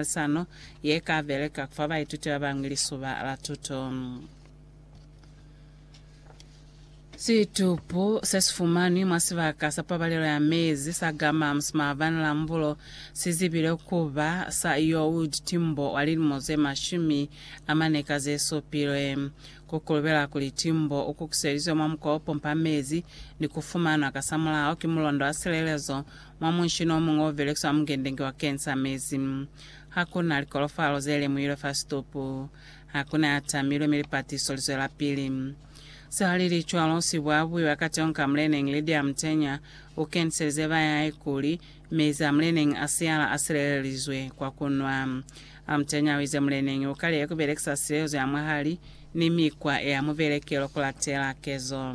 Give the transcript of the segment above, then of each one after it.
Puaisano ye ka beleka ku fa baituti ba bañwi lisuba la tuto. Situpu se si fumanwi mwa sibaka sa pabalelo ya mezi sa Gammams maabani la Mbulo si zibile ku ba sa Youd Timbo wa lilimo ze mashumi a mane ka ze supilwe. Ku kulubela kuli Timbo u kukuselizwe mwa mukwa o pompa mezi ni ku fumanwa kasamulaho ki mulondo wa silelezo Mwa munshini o muñwi o belekiswa mungendengi wa kensa mezi, ha ku na likolofalo ze lemuhilwe fa situpu. Ha ku na ya tamilwe mi lipatiso li zwelapili. Se ha li li cwalo, sibo a buiwa ka teño ka muleneñi Lydia Mutenya u keniselize ba hae kuli, Mezi a muleneñi a siyala a silelelizwe kwa ku nwa. A Mutenya u ize muleneñi u kalihe ku belekisa silelezo ya mwahali ni mikwa ya mubelekelo ku latela kezo.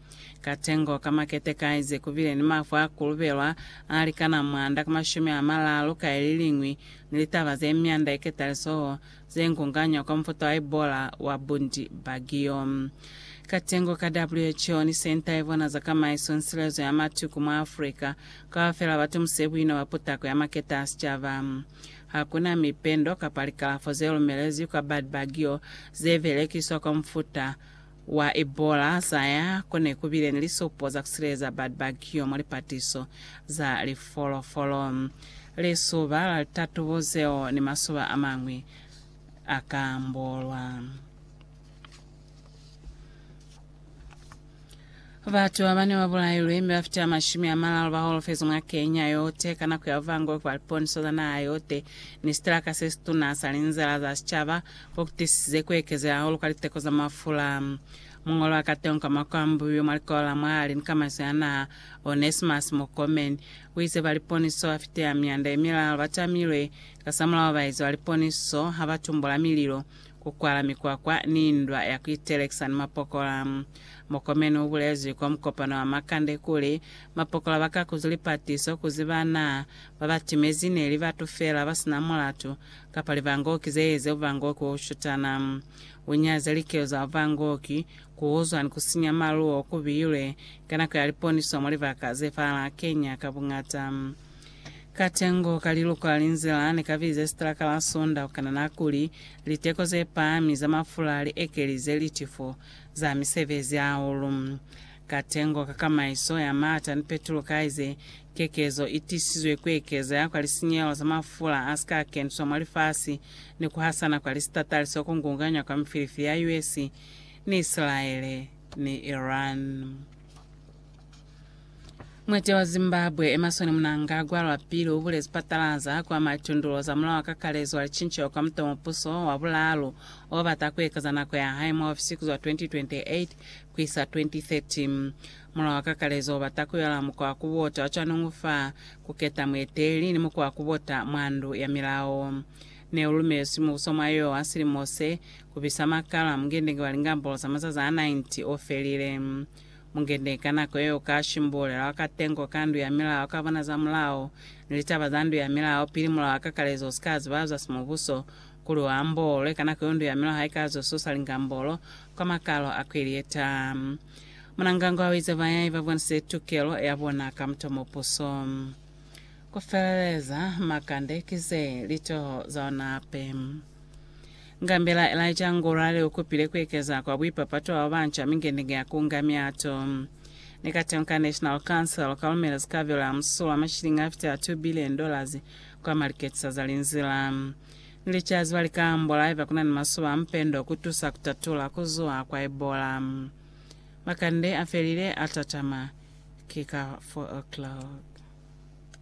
Ka tengo ka makete kaize kubile ni mafu a kulubelwa a likana mwanda ka mashumi a malalu ka ililiñwi ni litaba ze myanda ye ketalisoho ze nkunganywa kwa mufuta wa Ebola wa Bundi Bagio. Ka tengo ka WHO ni Senta ye Bona za Kamaiso ni Silezo ya Matuku mwa Afrika kaufela ba tumuse buina bwa putako ya makete a sicaba. Ha ku na mipendo kapa likalafo ze lumelezwi kwa Bad Bagio ze belekiswa kwa mufuta wa Ebola za ya ko ne ku bile ni lisopo za ku sileleza batu ba kiyo mwa lipatiso za lifolofolo, lisoba la litatubo zeo ni masoba a mañwi a ka ambolwa. Batu babane babulailwe mi bafita mashumi amalalu baholofezwe mwa Kenya yote ka nako ya bubangobe bwa liponiso za naha yote, ni sitalaka sesituna sa linzila za sicaba bo kutisize kuekezela hahulu kwa liteko za mafula. Muñolo wa kateho ka mwa kuambuiwe mwa likolo la mwahali ni kamaiso ya naha, Onesmus Murkomen, uize ba liponiso bafite amyanda yemilaalu batamilwe kasamulaho baezi ba liponiso habatumbula mililo ku kwala mikwakwa ni ndwa ya ku itelekisa ni mapokola. Mokomeni u bulezwi kwa mukopano wa makande kuli, Mapokola ba ka kuzu lipatiso ku ziba na ba ba timezi ne li batu fela ba si na mulatu, kapa livangoki ze eze uvangoki wo shutana. U nyaze likelo za uvangoki, ku uzwa ni ku sinya maluo ku bilwe ka nako ya liponiso mwa libaka ze fala Kenya ka buñata. Katengo ka liluko la linzila ne ka bize sitraka la Sunda ku kanana kuli liteko ze pahami za mafula li ekelize litifo za misebezi hahulu. Katengo ka kamaiso ya maata ni petulo kaize kekezo i tisizwe ku ekeza kwa lisinyehelo za mafula a si ka keniswa mwa lifasi ni ku hasana kwa lisitatali se ku ngunganywa kwa mifilifi ya US ni Isilaele ni Iran. Mwete wa Zimbabwe Emerson Mnangagwa lwapili ubule sipatala za kwa Matundulo zamulaho wa kakalezo wa licinceho kwa mutomupuso wa bulaalu obata kuekeza nako ya hae mwa ofisi kuzwa 2028 kuisa 2030. Mulao wa kakalezo ubata kuyola mukwa wa kubota wa cwanuñwi fa kuketa mueteleli ni mukwa wa kubota mwa ndu ya milao. Neulumelwiswi mubuso mwa yowa silimo se, kubisa makalo a mungendenge wa lingambolo za mazazi a 90 ofelile. Mungende ka nako yeo ka shimbulela wa katengo ka ndu ya milao ka bona za mulao ni litaba za ndu ya milao pili mulao wa kakalezo usika ziba zwa simubuso, kuli u ambolwe ka nako yo ndu ya milao haika zwa susa lingambolo kwa makalo a kweli ye taa. Munangangwa u ize bayai ba bonise tukelo ya bona ka muto mo puso. Ku feleleza, makande ki ze litoho za ona hape. Ngambela Elijah Ngurare ukupile kuekeza kwa buipapato bwa babanca mingenenge ya kunga miato. Ni katengo ka National Council kalumela zikabelo ya musulo wa mashilingi afitela 2 billion dollars kwa maliketisa za linzila ni licazi ba lika ambola haiba kuna ni masoba a mpendo kutusa kutatula kuzuha kwa Ebola. Makande afelile atatama ki ka 4 o'clock.